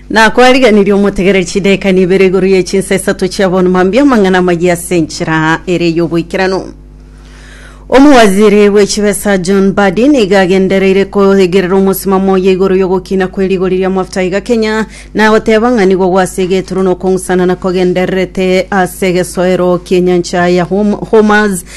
nakwariganirie omotegereri chideka nibere igoro ye chinsa isato chia bono mambia amang'ana amaya ase enchera ere y'oboikeranu omowaziri bw'echibesa john badi niga agendereire koigerera omosimamo oye igoro y'ogokina kwe rigori ria mafuta iga kenya na goteba ng'a nigo gwase egeturwa na okong'usana na kogendererete ase egesoero ki'enyancha ya Hom- homers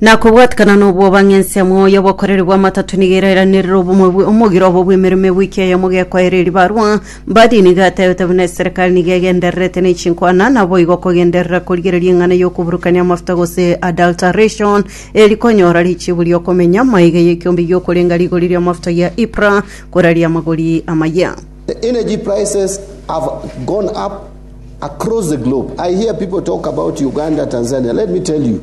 na kobwatikana n'obwoba ng'ense amo oyo obokoreri bw'amatato nigo erairanerire obomwe bwe- omogiro obo bw'emeremo ewiki eyemo gekoeire ribarwa mbadi nigo atebete buna eserekari nigo egendererete nechinkwana naboigo kogenderera korigereria eng'ana y'okoburukania amafuta gose adulteration eri konyora richibu ri'okomenya maiga y'ekiombe gi'okorenga rigori ri'amafuta gia ipra koraria amagori amaya The energy prices have gone up across the globe. I hear people talk about Uganda, Tanzania. Let me tell you,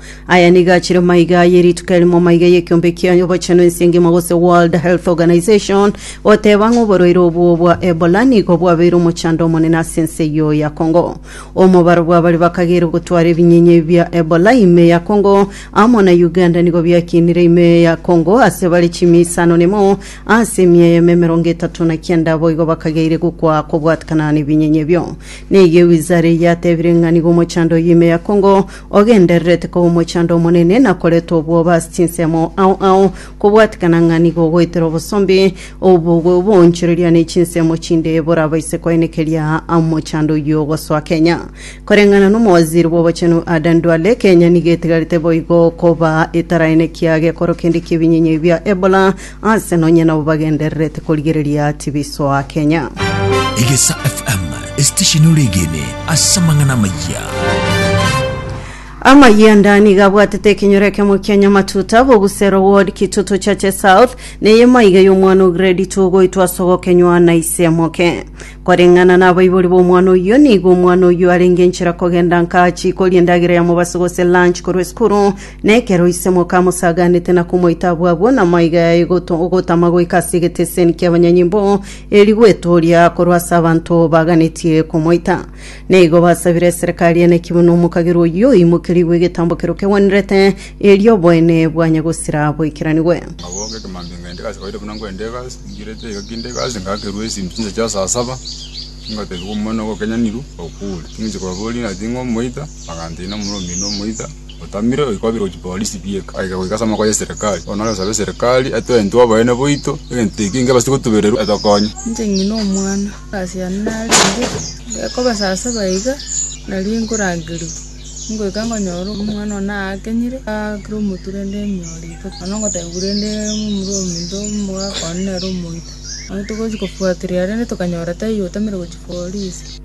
Aya nigo achire amaiga aye rituko erimo amaiga y'ekiombe kia obochenu ense engima gose World Health Organization goteba ng'a oborwaire obwo bwa Ebola nigo bwabeire omochando omonene ase ense eyio ya Congo. Omobaro bwa baria bakageire gotwara ebinyinya ebi bia Ebola ime ya Congo amo na Uganda nigo biakinire ime ya Congo ase bare chimi isano na imo ase ime eyemo emerongo etato na kianda boigo bakageire gokwa kobwatekana nebinyinya ebio. Nigo ewizara eye yatebire ng'a nigo omochando oyo ime ya Congo Ogendererete koba omochando omonene na koreta obwoba ase chinsemo ao ao, kobwatikana ng'a nigo ogoetera obosombe obwo bw'oboonchoreria ne chinsemo chinde borabaise koenekeria omochando oyio ogosoa Kenya. Koreng'ana n'omowaziri bw'obochenu Adan Duale, Kenya nigo etigarete boigo koba etaraenekia gekoro kende ki'ebinyinya ebia Ebola Aase nonye nabo bagendererete korigereria tibi soa Kenya. Egesa FM, esitesheni ore egene ase amang'ana amayia. Amayia nda niga abwatete ekenyoro ekemo kia Nyamatuta, Bogusero Ward, Kitutu Chache South, neye maiga y'omwana o grade 2 goitwa ase ogokenywa na ise moke. Koreng'ana na abaibori b'omwana oyio, nigo omwana oyio arenge enchera kogenda nka achiikoria endagera ya mobaso gose lunch korwa esukuru, Na ekero ise mokamosaganete na komoita abwo abwo, namaiga yaye goto- ogotama goika ase egeteseni ki'abanyanyimbo, eri gwetooria korwa ase abanto baganetie komoita. Na igo basabire eserekari ene ki buna omokagerwa oyio oimokerigwe egetambo keria kegwenerete, erio oboene bwanye gosira boikeranigwe. Nabo ng'ekemanto ng'ende gase kawaida buna nkwenda egasi, nchirete iga kinde egasi ngakerwa esimi chinsa chia saa saba, ngotebiwa omwana ogo okenyanirwe, okure. Ting'anchia kobaboria ng'a ting'omoita, bagantebi nomura omino omoita. Otamire oye kwabera gochia polisi bieka. Aike goika ase amaboko yeserekari. Bono nare osabe eserekari etwe intwe oboyene boito egento eke inge ebastie gotubererwa etokonye. Inche ng'ina omwana asiane narenge gekoba saa saba iga nario nkorangerigwa ngoika nkonyora omwana one aakenyire aakire omotwe rende emiooro iko nonya ngotebiwa rende momura ominto omogaka one nere omoito. Nabo togochia kofuatiria rende tokanyora taiyo otamire gochia polisi.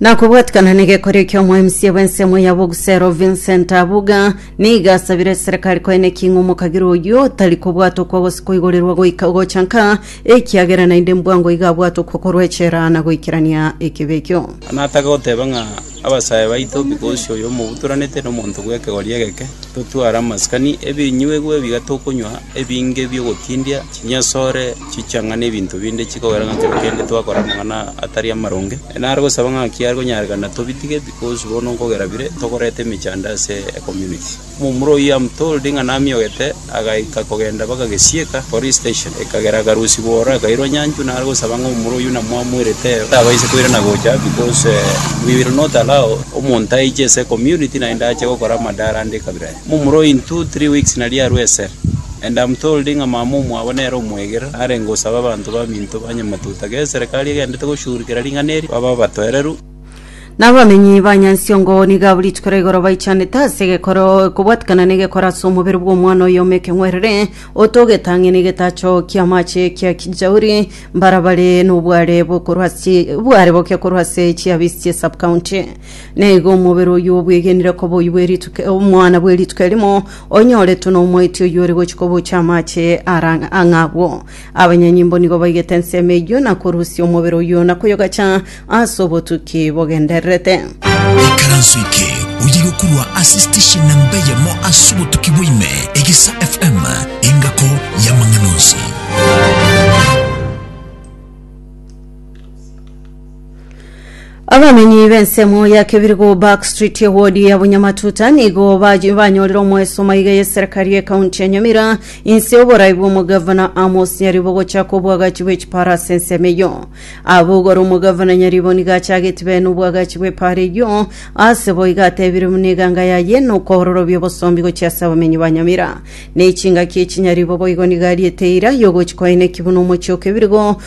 Na kobwatikana negekorio ki'omoemisia bw'ensemo ya Bogusero Vincent Abuga, nigo asabire serekari koe ne king'u omokagera oyio tari kobwata okwo gose koigorirwa goika ogocha nka, ekiagera naende mbwango iga abwate okwo korwa echela na goikerania ekibe ekio. Natake goteba ng'a abasae baito, Bikosi oyo omobutoranete nomonto bw'ekegori egeke, totware amasikani, ebinyuegwa ebiya tokonywa, ebinge bi'ogotindia, chinyasore, chichang'a na ebinto binde chikogera ng'a kero kende twakora amang'ana atari amaronge. Nare gosaba ng'a ki are konyarekana tobitige because bono nkogera bire tokoreta emechando ase ecommunity. Omomura oyio am told ng'a namiogete agaika kogenda mpaka Gesieka police station ekagera akarusigwa oro akairwa nyanchwa nare gosaba ng'a omomura oyio namwamoirete ero tabaisa koirana gocha because we will not allow omonto aiche ase ecommunity naende ache gokora amadara ande ekabira eye. Momura ointwo three weeks nari arue esere, and am told ng'a mama omwabo nere omwegerero narenge gosaba abanto baminto ba Nyamatuta g'eserekari egendete goshugurikera ring'ana eri babe abatoereru. Nabamenyi ba Nyansiongo nigo abwo rituko ra igoro baichanete ase egekoro ekobwatikana n'egekoro ase omobere bw'omwana oyomo ekeng'werere oto ogetang'e n'egetacho ki'amache ekia Kijauri mbara bare nobware bokorwa ase bware boke korwa ase chiabisi chie sub-county Na igo omobere oyio obwegenire koba oyio bwe rituko omwana bwe rituko erimo, onyoretwe nomoiti oyio ore gochia kobocha amache ara ang'a agwo. Abanyanyimbo nigo baigete ensemo eyio na korusia omobere oyio na koyogacha ase obotuki bogendererete. Ikaranso eke oye gokorwa ase station namba eyemo ase obotuki bwa ime, Egesa FM, engako y'amang'ana onsi. Abamenyi b'ensemo ya Kebirigo Back Street ewodi ya Bunyamatuta nigo baji- banyorire omwesomo iga y'eserikari y'ekaunti ya Nyamira inse y'oborai bw'omogavana Amos Nyaribo gochaka obwagachi bw'echipara ase ensemo eyio. Aba igoro omogavana Nyaribo nigo achagetie bene obwagachi bw'epara eyio ase bo iga atebire buna eganga yaye nokoororobia obosombi gochia ase abamenyi ba Nyamira. Nechingaki echi Nyaribo boigo nigo ariete eira yogochi koeneki buna omochie o Kebirigo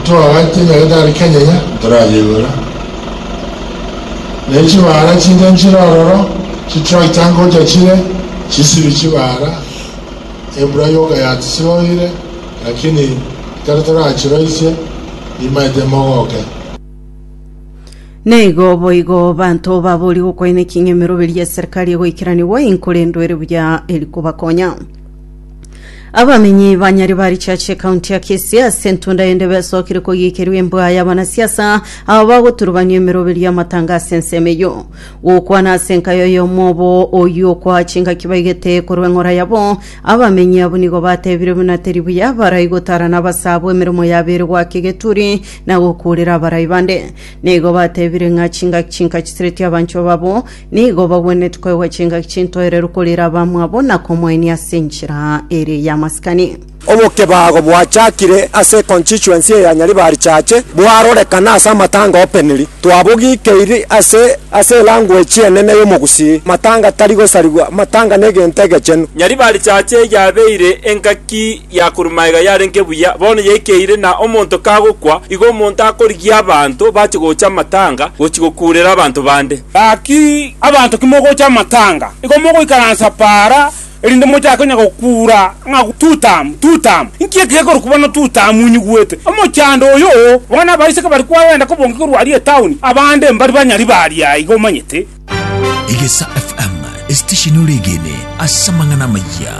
Ntoagaite emerete are Kenya iga ntorayeigure. Ne chibara chiria nchire ororo, chitrakta ngocha chire chisibi chibara, embura yoka yatisoire, lakini ekero torachiroisie, nimaete mogoke. Na igo boigo abanto baboria gokwaina eking'emeroberio gia serikali egoikeranigwa, inkorendwe ere buya eri kobakonya. Abamenyi ba Nyaribari Church ekaunti ya Kisii ase entunda yende besokire kogiikerwa embwa y'abanasiasa aba bagoturubania emeroberio y'amatanga ase ensemo eyio. Gokwana ase enka y'oyomo obo oyio okoa chingaki baigete korwa eng'ora yabo, abamenyi abwo nigo batebire buna teri buya barai gotarana abasaabwo emeremo yabo ere goaka egeturi na gokuurera abarai bande. Nigo batebire ng'a chingaki chinka chisireti abanchwa babo Nigo bagwenereti koegwa chingaki chintoereru korera abamwabo na komoenia ase enchera ere y'amasikani. Obokebago bwachakire ase constituency eya Nyaribari Chache bwarorekana ase amatanga openiri. Twabogikeiri ase ase elanguage enene y'omogusii. Matanga tari gosarigwa, matanga negento egechenu. Nyaribari Chache yabeire engaki ya korumaega yarenge buya, bono yaikeire na omonto kagokwa igo omonto akorigia abanto bache gocha amatanga gochi gokuurera abanto bande. Gaki abanto kimogocha amatanga, igo mogoikaransa para, erinde mochake onye gokuura ng'a Tutamu, Tutamu! Inki eke gekorokwa bono Tutamu onyigwete? Omochando oyo! Bono abaiseke bari kwagenda kobonga korwa aria etauni, abande mbari banyari b'aria aiga, omanyete. Egesa FM, esitesheni ore egeene ase amang'ana amayia.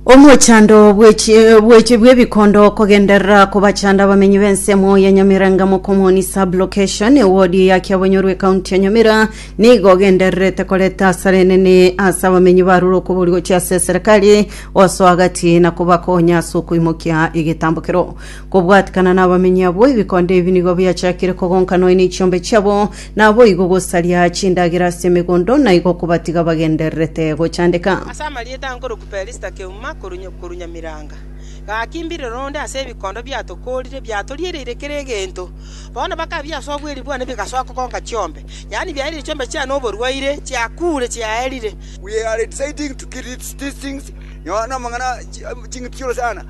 Omochando bw'ebiche bw'ebikondo okogenderera kobachanda abamenyi b'ensemo ya Nyamira Ngamo Comuni Sub-Location, ewodi ya Kiabonyoru ekaunti ya Nyamira, nigo ogendererete koreta asara enene ase abamenyi barure okoboria gochia ase eserekari osoa gati na kobakonya ase okoimokia egetambokero. Kobwatikana nabamenyi abwo, ebikondo ebi nigo biachakire kogonka nonya nechiombe chiabo, naboigo gosaria chindagera ase emegondo, na igo kobatiga bagendererete gochandeka. Ase amarieta ankorokwa Pelisita keuma korwa korwa Nyamiranga, gaki mbirero onde ase ebikondo biatokoorire biatoriereire kera egento. Bono bakabia ase obweeri bwane bigasoa kogonka chiombe, yaani biaerire chiombe chiane oborwaire, chiakuure, chiaerire. We are exciting to kill these things, nonya na amang'ana ching'iti chioro sana.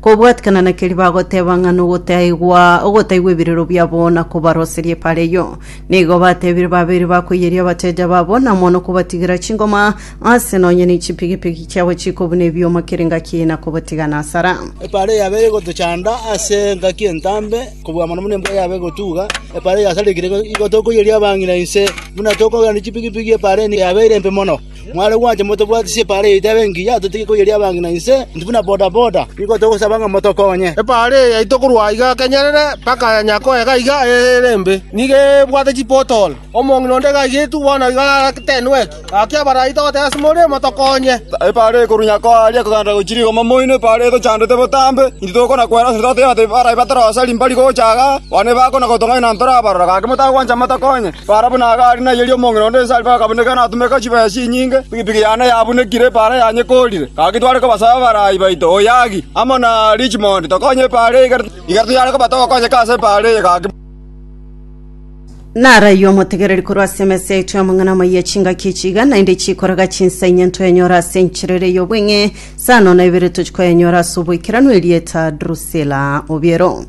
Kobwatikana na keria bagoteba ng'a nogotaigwa ogotaigwa ebirero biabo na kobaroseria epareyio. Nigo batebire babeire bakoiyeria abateja babo na mono kobatigera chingoma aase nonya ne chipigipigi chiabo chikobuna ebioma kera engaki na kobotiga nasara. Epareyio yabeire egotochanda ase engaki entambe kobua mono buna embura yabeire egotuga. Epareyio yasarekire igo tokoiyeria abang'ina inse buna tokogenda ne chipigipigi epareyio yabeire embe mono. Mware gwancha motobwatisi epaara yaito ebe engiya, totige koyeria abange na inse, intwe buna bodaboda nigo togosaba ng'a motokonye. Epaara eye yaito korwa aiga kenyerere mpaka ya Nyakoe gaiga ere embe, nigo ebwate chipotolo. Omong'ina onde gaigetwe bono iga aratenwetwe. Gaki abarai togoteba ase more, Motokonye! Epaara eye korwa Nyakoe aria ekogenda gochia rigoma moino, epaara eye tochandete botambe, intwe togokona kwera ase toteba ati, Abarai batorosari mbari gocha aaga, bono ebakona gotong'aina ntorabarora, gaki motagwancha motokonye. Barabwo nagari nayeria omong'ina onde ense ariko akabuneka natumeka chibesa chinyinge, pigipigi yane yabunekire, epaara yanyekoorire. Gaki tware kobasaba abarai baito, Oyagi, amo na Richmond, tokonye epaara eye igere, igere toyare koba togokonyeka ase epaara eye gaki. Naraiyo omotegereri korwa ase emesa yaito y'amang'ana amayia chingaki echi iga naende chikoraga chinsa inye ntoyenyora ase enchera ere y'obong'e, saa nono na ibere tochikoyenyora ase oboikeranu erieta Drusila obiero.